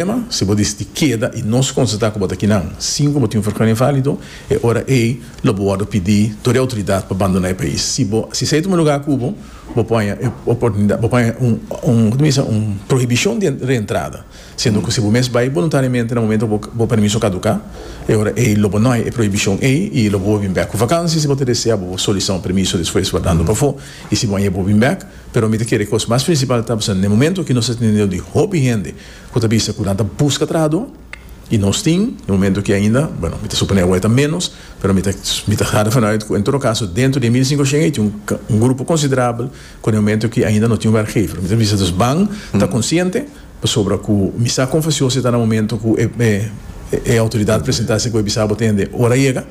Promé problema, si bo disití keda i nos konstatá ku bo ta kinan sin ku bo tin un forkeur invalido, e ora ei lo bo wòrdu pidi tur e outoridat pa bandoná e pais. Si bo si esei ta un lugá kubo, bo paña e oportunidat bo paña un un kos ta bisa un prohibishon di reentrada, siendo ku si bo mes bai boluntariamente na momentu ku bo permiso kaduká, e ora ei lo bo no hay e prohibishon ei i lo bo por bin bèk ku vakansi si bo ta desea bo por solisitá un permiso despues wardando pafó i si bo a yega bo bin bèk. Pero mi ta kere kos mas prinsipal ta pasando na e momentu aki nos ta tene un nivel di hopi hende ku ta bisa ku nan ta buska trahadó i nos tin e momentu ki ainda, bueno, mi ta suponé awor e ta ménos, pero mi ta mi ta hada vanuit ku en todo kaso dentro di e mil i sinku shen ei tin un un grupo konsiderabel ku den momentu ki ainda no tin wèrkgever. Mi ta bisa dus ban ta konsiente pasobra ku mi sa kon fasió si ta na momentu ku e e e outoridat presentá si ku e bisa bo tende ora yega.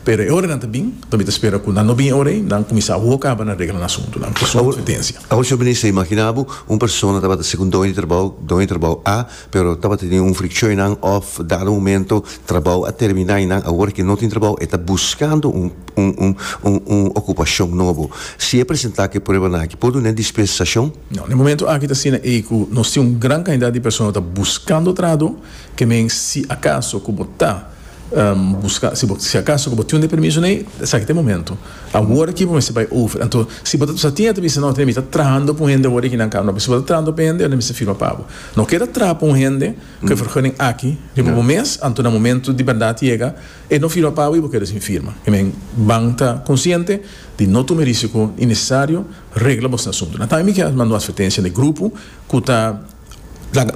Pero e oranan ta bin, pa mi ta spera ku nan no bin e ora ei, nan kuminsá a woka aba na regla nan asuntunan. Ku suma kompetensia. Awor Señor Minister, imaginá bo un persona tabata ser un doño di trabou, doño di trabou A, pero tabata tene un frikshon einan òf dado momento trabou a terminá einan, awor ke no tin trabou e ta buskando un un un okupashon nobo. Si e presentá ku e pruebanan aki, por dun'é dispensashon? No, na e momento aki ta asina ei ku nos tin un gran kantidat di persona ta buskando trado, ke men si akaso ku bo ta. Buska, si bo, si akaso ku bo tin un permiso nei, esaki ta e momentu. Awor aki bo mester bai over. Anto, si bo ta sa tin e ta bisa, no, mi ta trahando pa un hende awor aki nan kaba. No, pero si bo ta trahando pa e hende, yo no mester firma pa bo. No keda traha pa un hende ku e vergunning aki riba bo mes, anto na momentu di bèrdat yega, e no firma pa bo i bo keda sin firma. I men, ban ta konsiente di no tuma e risiko innesesario, regla bosnan asuntu. Nan tambe mi ke mando un atvertensia na e grupo ku ta.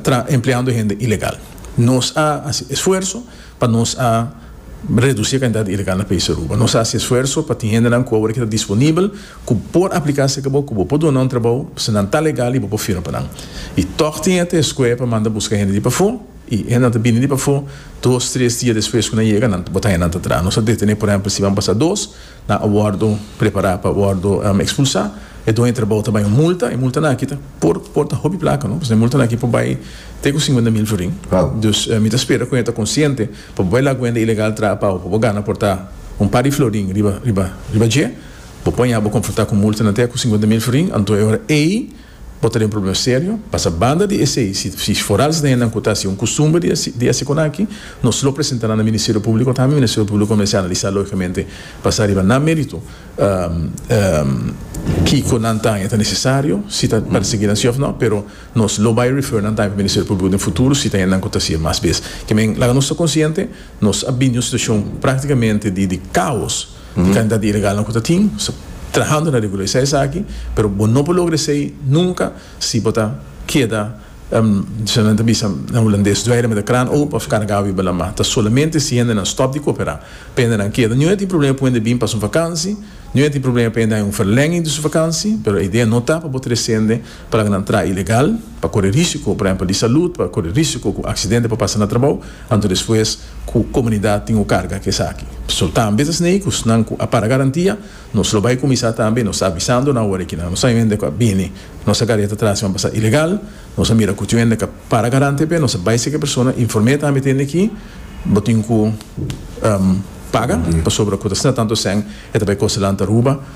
ta empleando hende ilegal. Nos a hasi esfuerso pa nos a reduci e cantidad di ilegal na país Aruba. Nos a hasi esfuerso pa tin hendenan cu awor ta disponibel cu por aplica si cabo cu bo por duna un trabao pasobra nan ta legal y bo por firma pa nan. Y toch tin e escue pa manda busca hende di pafo y hendenan ta bini di pafo dos, tres dia despues cu nan yega nan ta bota hendenan ta traha. Nos a detene por ehempel si ban pasa dos. nan a wòrdu prepará pa wòrdu ekspulsá, e dueño di trabou ta bai un multa, e multanan aki ta por por ta hopi plaka no, pasobra e multanan aki por bai te ku singuenta mil florin, dus mi ta spera ku e ta konsiente pa bo bai laga kuenta ilegal traha pau pa bo gana por ta un par di florin riba riba riba dje, bo por haña bo konfrontá ku multanan te ku singuenta mil florin, anto e ora ei Bo ta den problema serio, pasa banda di esei, si foral esnan nan ku ta hasi un kustumber di hasi ekonaki, nos lo presenta nan na Ministerio Públiko, ta mi Ministerio Públiko kominsá analisá lógikamente, basá riba nan mérito, kiko nan ta haña ta nesesario, si ta persiguí nan sí òf nò, pero nos lo bai refer nan ta haña pa Ministerio Públiko den futuro si ta haña nan ku ta hasi e mas bes. Ke men, laga nos ta konsiente, nos a bini un situashon práktikamente di kaos. Di cantidad di ilegalnan cu ta tin trahando na regulariza esaki, pero bo no por logra esey nunca si bo ta keda, shina nan ta bisa na Hulandes, dweire met de kraan open of carga awi balanma. Ta solamente si hendenan stop di coopera pa hendenan keda. Nu a tin problema pa wende bin pa su vakansi, nu a tin problema pa hende haña un verlenging di su vakansi, pero e idea no ta pa bo trece hende, Plañanan traha ilegal, pa kore risiko, por ehempel, di salud, pa kore risiko ku aksidente por pasa na trabou, anto despues ku komunidat tin ku karga ku esaki. So, ta ambes asina ei ku esnan ku a para garantia, nos lo bai kuminsá tambe, nos ta avisando nan awor ei ku nan lo sa hende ku a bini nos a gareta tras i a pasa ilegal, nos a mira ku tin un hende ku a para garante p'e, nos a bai seki e persona, inform'é tambe tende ki bo tin ku paga, pasobra ku ta asina tantu esèn e ta bai kostanan ta ruba.